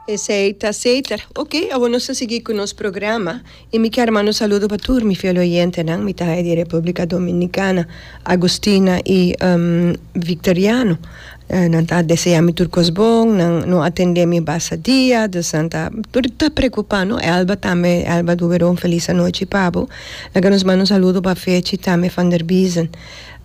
Esei ta seter. Ok, awor nos ta sigui cu nos programa y mi kier manda un saludo pa tur mi fiel oyentenan. Mi ta haya di Republica Dominicana, Agustina y Victoriano. Nan ta desea mi tur cos bon, nan no a tende mi basa dia, dus nan ta tur ta preocupa, no? Elba tambe, Elba Duberon, feliz anochi pa bo. Laga nos manda un saludo pa Fechi tambe van der Biezen.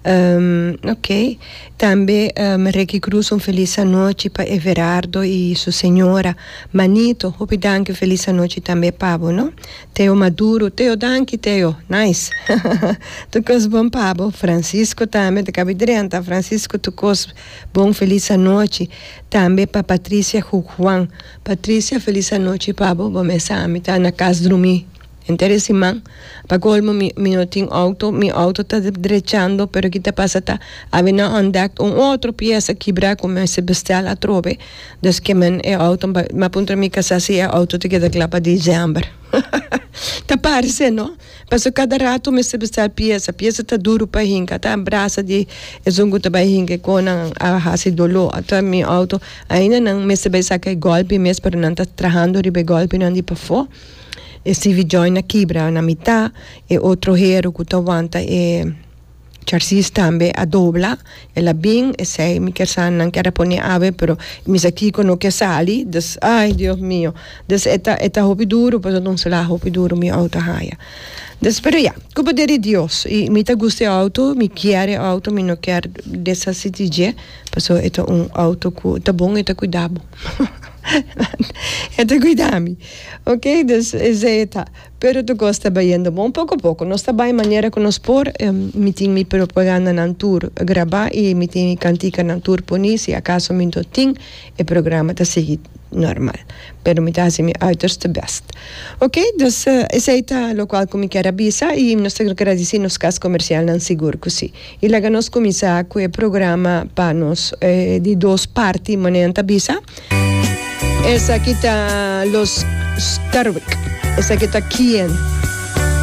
ok. Tambe Ricky Cruz un felis anochi pa Everardo y su señora. Manito, hopi danki felis anochi tambe pa bo no. Teo Maduro, Teo danki Teo, nice. tur cos bon pa bo. Francisco tambe ta cabe drenta, Francisco tur cos bon felis anochi. Tambe pa Patricia Jujuan, Patricia felis anochi pa bo, bo mesa ami ta na cas drumi. Henter e siman, pa colmo mi mi no tin auto, mi auto ta drechando pero ki ta pasa ta a haber na ontdekt un otro pieza kibra cu mi mester bestel atrobe, dus ke men e auto pa mi a puntra mi casa si e auto ta keda cla pa december hahaha ta parse no paso cada rato mester bestel pieza, pieza ta duro pa hinca ta brasa di esun cu ta bay hinca y con nan a haci dolo ta mi auto ainda nan mester bay saca e golpe mes pero nan ta trahando riba e golpenan di pafo. E CV join a kibra na mita, e otro hero cu ta wanta e charsis tambe a dobla, el a bin esey mi ker sa nan ker a pone awe pero misa Kiko no ker sali, dus ay Dios mio, dus e ta e ta hopi duro pues a donsela hopi duro mi auto a haya, dus pero ya cuba de di Dios y mi ta gusta e auto, mi kier e auto mi no ker deshaci di dje pasobra e ta un auto cu ta bon y ta cuida bo e ta cuida mi. Ok, dus esei ta. Pero tu kos ta bayendo bon poko poko. Nos ta bai manera ku nos por. Mi tin mi propagandanan tur grabá i mi tin mi kantikanan tur poni si akaso mi no tin e programa ta sigui normal. Pero mi ta hasi mi uiterste bèst. Ok, dus esei ta lokual ku mi kier a bisa i nos ta gradisí nos kas komersialnan sigur ku si. Y laga nos cuminsa cu e programa pa nos di dos parti manera nan ta bisa. Esaki ta Los Sterwick. Esaki ta Quien.